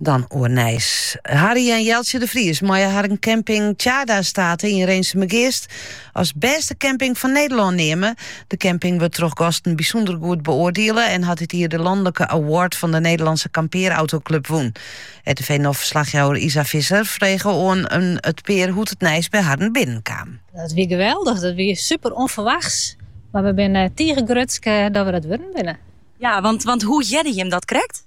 Dan oer Nijs. Harry en Jeltsje de Vries meie har een camping Tjaarda State yn Rinsumageast as bêste camping fan Nederlân neame. De camping wurdt troch gasten bysûnder goed beoardiele en hat dit jier de lanlike award fan de Nederlandse Kampeerautoklub wûn. RTV NOF-ferslachjouwer Isa Visser frege oan it pear hoe't it nijs by harren binnen kaam. Dat wie geweldich, dat wie super ûnferwachts. Mar we binne tige grutsk dat we dat wurden binne. Ja, want, want hoe hearde jim dat krekt?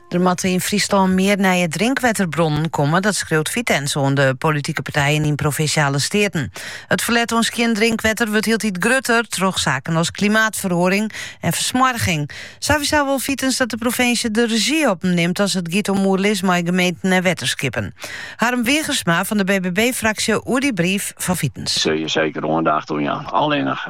Der moatte yn Fryslân mear nije drinkwetterbronnen komme, dat skriuwt Vitens oan de politike partijen yn Provinsjale Steaten. It ferlet oan skjin drinkwetter wurdt hieltyd grutter troch saken as klimaatferoaring en fersmoarging. Sowieso wol Vitens dat de provinsje de rezjy op him nimt as it giet om oerlis mei gemeenten en wetterskippen. Harm Wiegersma fan de BBB-fraksje oer dy brief fan Vitens. Sille je seker oandacht oan jaan. Allinnich.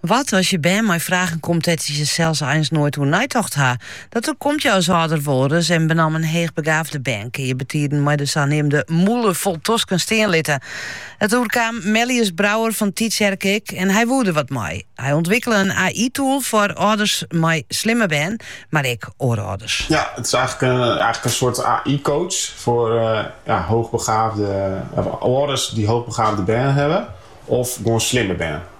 Wat as je bern mei fragen komt dêr't je sels eins noait oer neitocht ha? Dat oerkomt je as âlder wolris en benammen heechbegaafde bern kinne je betiden mei de saneamde mûle fol tosken stean litte. Dat oerkaam Mellius Brouwer fan Tytsjerk ek en hy woe der wat mei. Hy ûntwikkele in AI-tool foar âlders mei slimme bern, mar ek oare âlders. Ja, it is eigenlijk een soort AI-coach voor hoogbegaafde ouders die hoogbegaafde bern hebben of gewoon slimme bern.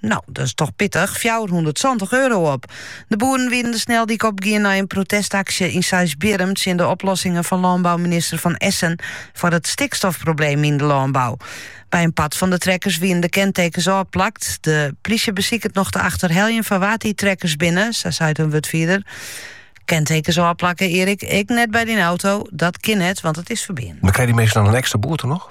No, dat is toch pittig, fjouwerhûndertsantich euro op. De boeren wienen de sneldyk opgien nei in protestaksje yn Seisbierum tsjin de oplossingen van lânbouminister Van Essen foar it stikstofprobleem yn de lânbou. By in part fan de trekkers wienen de kentekens ôfplakt. De plysje besiket noch te achterheljen fan wa't dy trekkers binne, sa seit in wurdfierder. Kentekens ôfplakken, Erik, ik net by dy auto. Dat kin net, want it is ferbean. Mar krije dy minsken dan in ekstra boete noch?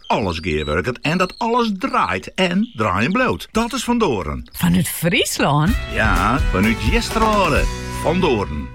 alles gearwurket en dat alles draait en draaien bliuwt. Dat is Van Doorn. Fanút Fryslân? Ja, fanút Geasterlân. Van Doorn.